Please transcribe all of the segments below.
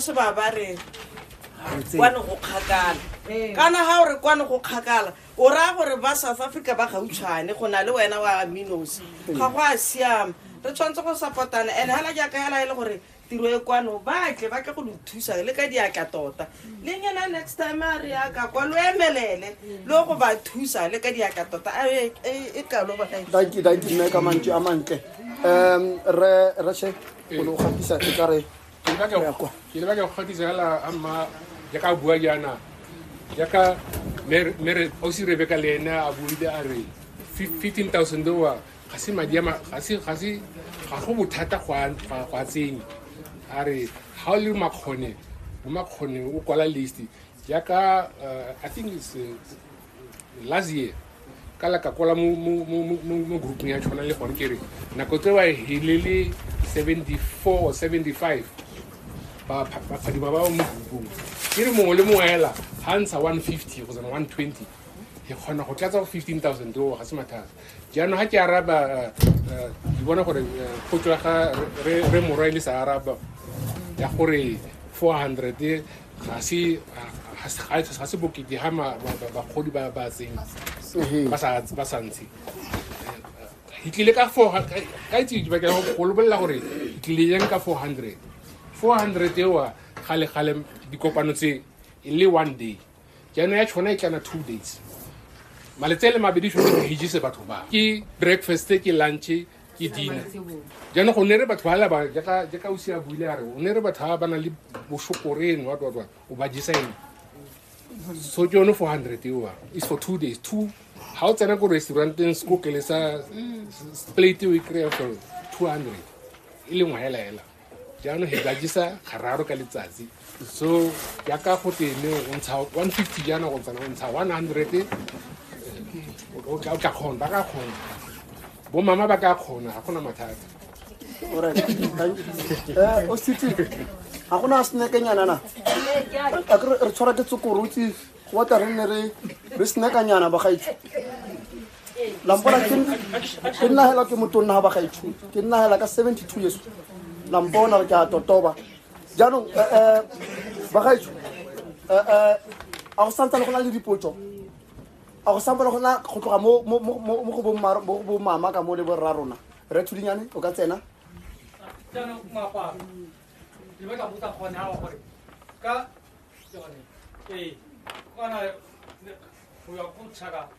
se ba ba re kwane go kgakala ee. kana ga o re kwane go kgakala o raya gore ba south africa ba gautshwane go na le wena wa minos ee. ga go a siama re tshwanetse go sapotana and hala jaaka hala e le gore tiro e kwano ba tle ba tle go lo thusa le ka diatla tota le nyena next time a re yaka kwa lo emelele le go ba thusa le ka diatla tota e, e, e kalo ba danki danki mme ka mantsi a mantle um re re se go lo gatisa e ka re ke le batla go- ke le batla go kgatisa fela a mma jaaka a bua jaana jaaka Mer- Mer- ausi rebeka le ene a buile a re fif- 15000 oa ga se madi a ma- ga se- ga se- ga go bothata go a- go a- go a tsenya a re ga o le makgone mo makgone o kwala list jaaka uh, i think it's, uh, last year ka la ka kwala mo mo mo mo- mo mo grouping ya tshwana le gone ke re nako tse wa helele 74 or 75 ba pha- ba phadima ba ba mo groupung ke re mongwe le mongwe ela ga ntsha 150 go tsena 120 ke kgona go tlatsa go 15000 oo ga se mathata jaanong ga ke araba eh, eh, ke bona gore eh, potso ya ga re- re re morwa e le sa araba ya gore 400 ga se ga se- ga se- ga se bokete ga ma- ba- ba- bagodi ba ba tseng Ehe. ba sa ba sa ntshe ke tlile ka four ka ka itse ke batla go lebolela gore ke tlile yang ka 400 400 ewa gale gale dikopano tse e le one day jaanong ya tshwana e tlana two days maletse le mabedi tshwanetse go hijise batho ba ke breakfast ke lunch ke dina jaanong go ne re batho ba laba jaaka o sia buile a re o ne re batho ba ba nang le boshokore eno wa twatwa o ba jesa eno so ke yone four hundred eoa is for two days two ga o tsena ko restauranteng sekokele sa plate o e kry-a for two hundred e lengwe hela hela jaanong he jajisa gararo ka letsatsi so yaka go tene o ntsha one fifty jaana go tsana o ntsha one hundred o tla kgona ba ka kgona bo mama ba ka kgona ga gona mathata eh, o sitse ga gona a senekenyana na re tshwara ke tsokorotsi wa tla re nne re senekanyana bagaitse lampona ke nna hela ke motonna ga ba ga ithuti ke nna hela ka 72 yeso lampona re ke a totoba jaanong eh, eh, ba ga ithuti eh, a go santsa le go na le dipotso a go santsa le go na go tloga mo go bo mama ka mo le borra rona re thudinyane o ka tsena ka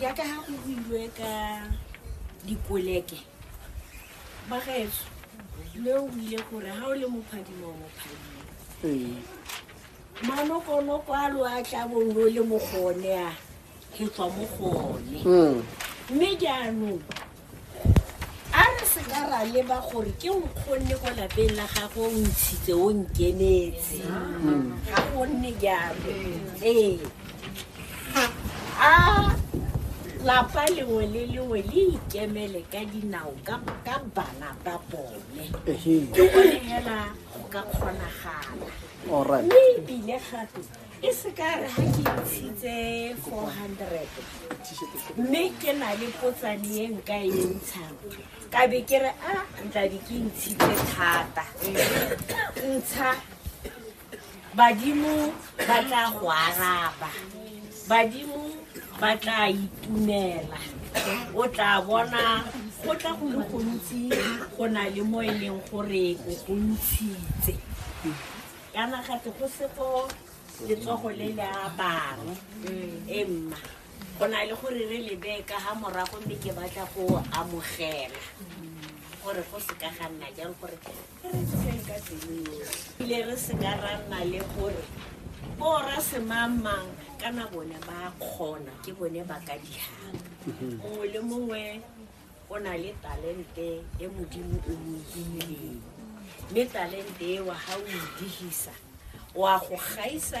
jaaka ga go builwe ka dikoleke bagaetso le o buile gore ga o le mophadimo o mophadimo ee. manokonoko a lo a tla bong lo le mogone a ke tswa mo gone hmm. mme jaanong A re se ka ra leba gore ke o kgonne kwa lapeng la gago o ntshitse o nkemetse ga gonne jalo ee a lapa lengwe le lengwe le ikemele ka dinao ka ka bana ba bone ke gore fela go ka kgonagala alright mme ebile gape e se ka re ga ke ntshitse 400 mme ke na le potsane e nka e ntshang ka be ke re a ntlabe ke ntshitse thata ntsha badimo ba tla go araba badimo ba tla itumela o tla bona go tla go le gontsi go na le mo e leng gore o go ntshitse ya magate go se go letsogo le le a bang e mma go na le gore re lebe ka ga morago mme ke batla go amogela gore go se ka ga nna jang gore re re tsogeng ka tsenyoe ile re se ka ra nna le gore bora semangmang kana bone ba kgona ke bone ba ka dihang mongwe le mongwe o na le talente e modimo o mo fileng mme talente eo ga o e digisa wa go gaisa